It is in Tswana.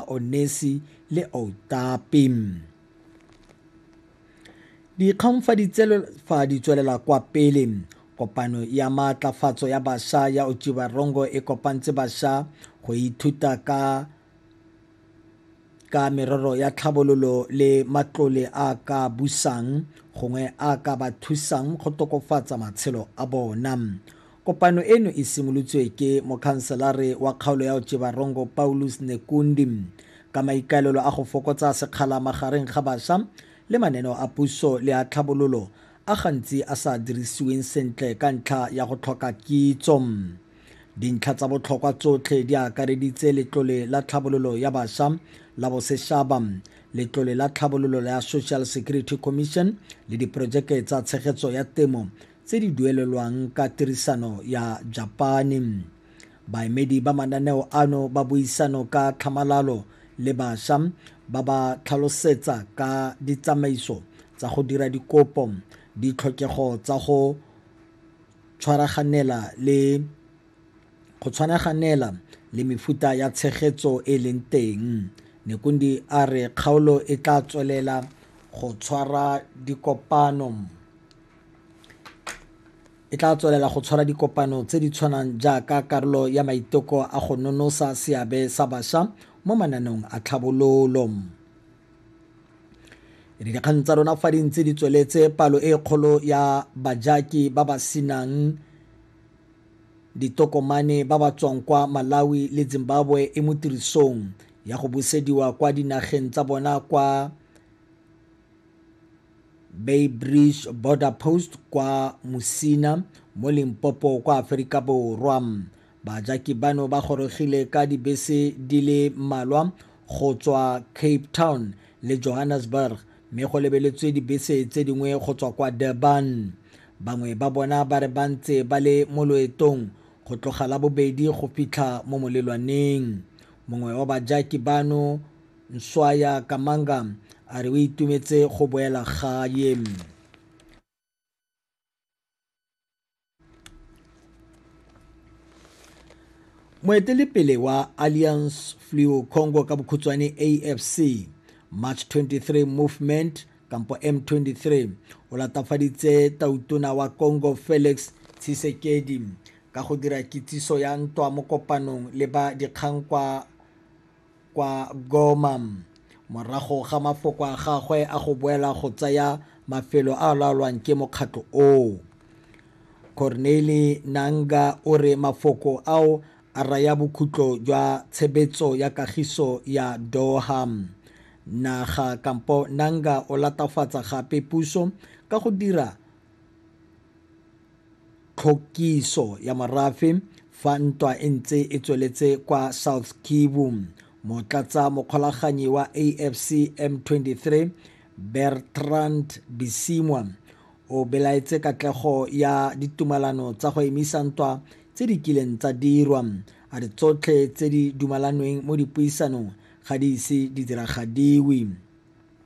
Onesi le Outapi. Dikgang fa di tswelela kwa pele kopano ya maatlafatso ya basha ya Otjiwarongo e kopantse basha go ithuta ka ka merero ya tlhabololo le matlole a ka busang gongwe a ka ba thusang go tokofatsa matshelo a bona Kopano eno e simolotswe ke Mokhanselare wa kgaolo ya Otjiwarongo Paulus Nekundi ka maikaelelo a go fokotsa sekgala magareng ga basha le mananeo a puso le a tlhabololo a gantsi a sa dirisiweng sentle ka ntlha ya go tlhoka kitso. Dintlha tsa botlhokwa tsotlhe di akareditse Letlole la Tlhabololo ya Basha la Boseshaba, Letlole la Tlhabololo la Social Security Commission le diporojeke tsa tshegetso ya temo tse di duelelwang ka tirisano ya Japane. Baemedi ba mananeo ano ba buisano ka tlhamalalo le basha ba ba tlhalosetsa ka ditsamaiso tsa go dira dikopo, ditlhokego tsa go tshwaraganela le go tshwanaganela le mefuta ya tshegetso e leng teng nekundi a re kgaolo e tla tswelela go tshwara dikopano e tla tswelela go tshwara dikopano tse di tshwanang jaaka karolo ya maiteko a go nonosa seabe sa bašwa mo mananeong a tlhabololo re dikgang tsa rona fa di ntse di tsweletse palo e kgolo ya bajaki ba ba senang ditokomane ba ba tswang kwa malawi le zimbabwe e mo tirisong ya go busediwa kwa dinageng tsa bona kwa Beitbridge Border Post kwa Musina mo Limpopo kwa Aforika Borwa. Bajaki bano ba gorogile ka dibese di le malwa go tswa Cape Town le Johannesburg mme go lebeletswe dibese tse dingwe go tswa kwa Durban. Bangwe ba bona ba re ba ntse ba le mo loetong go tloga la bobedi go fitlha mo molelwaneng. Mongwe wa bajaki bano Nswaya Kamanga a re o itumetse go boela gae. Moetelepele wa Alliance Fleo Congo ka bokhutswane AFC March 23 Movement kampo M23 o latafaditse tautona wa Congo Felix Tshisekedi ka go dira kitsiso ya ntwa mo kopanong le ba dikgang kwa kwa Goma morago ga mafoko a gagwe a go boela go tsaya mafelo a a laolwang ke mokgatlho oo. Corneille Nangaa o re mafoko ao a raya bokhutlo jwa tshebetso ya kagiso ya Doha. Naga kampo Nangaa o latafatsa gape puso ka go dira Tlhokiso ya morafe fa ntwa e ntse e tsweletse kwa South Kivu. Motlatsa mokgolaganyi wa AFC M23 Bertrand Bisimwa o belaetse katlego ya ditumalano tsa go emisa ntwa tse di kileng tsa dirwa a re tsotlhe tse di dumalanweng mo dipuisanong ga di ise di diragadiwe.